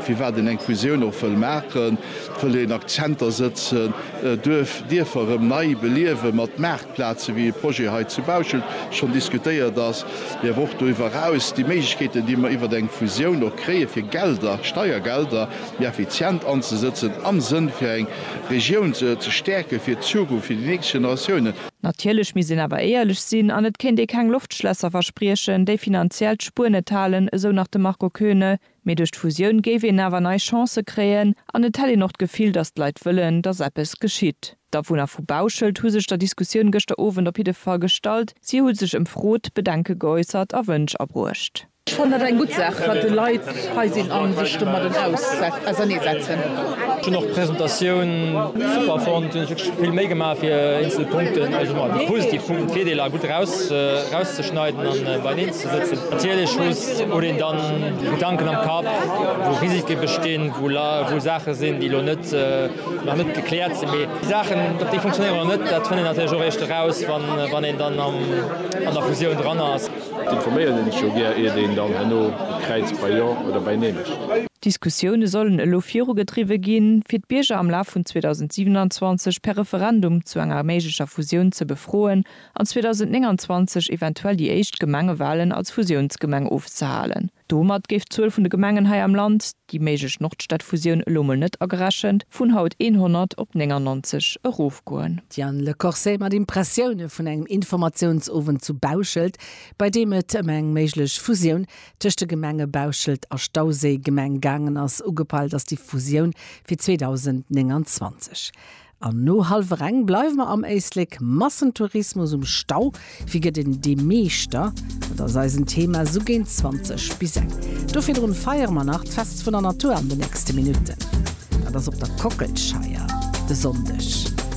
Firwat een eng Fusioun och wëll maachen, wëll een Akzenter sëtzen, duerf Dierfer erëm nei beliewen, mat Maartplazen, wéi e Projet hei zu Bauschelt schonn diskutéiert ass, mee awer och doriwwer eraus, déi Méiglechkeeten, déi mer iwwert eng Fusioun och kréien, fir Gelder, Steiergelder méi effizient anzesëtzen, am Sënn fir eng Regioun ze stäerken, fir d'Zukunft, fir déi nächst Generatiounen. Natierlech misst een awer éierlech sinn an et kéint ee keng Loftschlässer verspriechen, déi finanziell d'Spuer net halen, esou nach de Marco Koeune. Mee duerch d'Fusioun géif een awer nei Chancë kréien an et hätt een och d'Gefill, datt d'Leit wëllen, datt eppes geschitt. D'Awunner vu Bauschelt hu sech der Diskussioun gëschter Owend op jidde Fall gestallt. Si hu sech ëmfrot, Bedenke geäussert a Wënsch abruecht. Ech fannen dat eng gutt Saach, wat déi Leit hei sinn a sech domadden auserneesetzen. Ech hunn och d'Presentatioun super fonnt. Hunn ech wierklech vill Méi gemaach fir eenzel Punkten, also déi positiv Punkten, d'Virdeeler gutt erauszeschneiden a beieneen ze. ze sëtzen. Natierlech muss huet een dann Gedanken am Kapp, wou Risike bestinn, wou la wou Saache sinn, déi elo net nach net gekläert sinn. Mee déi Saachen, ob déi funktionéieren oder net, dat fënnt een natierlech och eréischt eraus, wa wann een dann am an der Fusioun dran ass. Et informéiert ee sech jo gär, iert een dann herno kräizt bei Jo oder bei Nee mécht. D'Diskussioune sollen elo virugedriwwe ginn, fir d'Bierger am Laf vun 2027 per Referendum zu enger méiglecher Fusioun ze befroen an 2029 eventuell déi éischt Gemengewalen als Fusiounsgemeng ofzehalen. Domat géif d'Zuel vun de Gemengen hei am Land, déi méiglech Nordstadfusioun elo mol net agerechent, vun haut 100 op 99 erofgoen. Diane Le Corset mat Impressioune vun engem Informatiounsowend zu Bauschelt, bei deem et ëm eng méiglech Fusioun tëscht de Gemenge Bauschelt a Stauséi, Gemeng, gaangen ass. Ugepeilt ass déi Fusioun fir 2029. An no halwer eng bleiwe mer am Éislek, Massentourismus um Stau, wie gëtt een dee Meeschter? Dat ass eisen Thema esou géint 20 bis eng. Do virdrun feiere mer nach d'Fest vun der Natur an den nächste Minutten. Dat ass op der Kockelscheier de Sonndeg.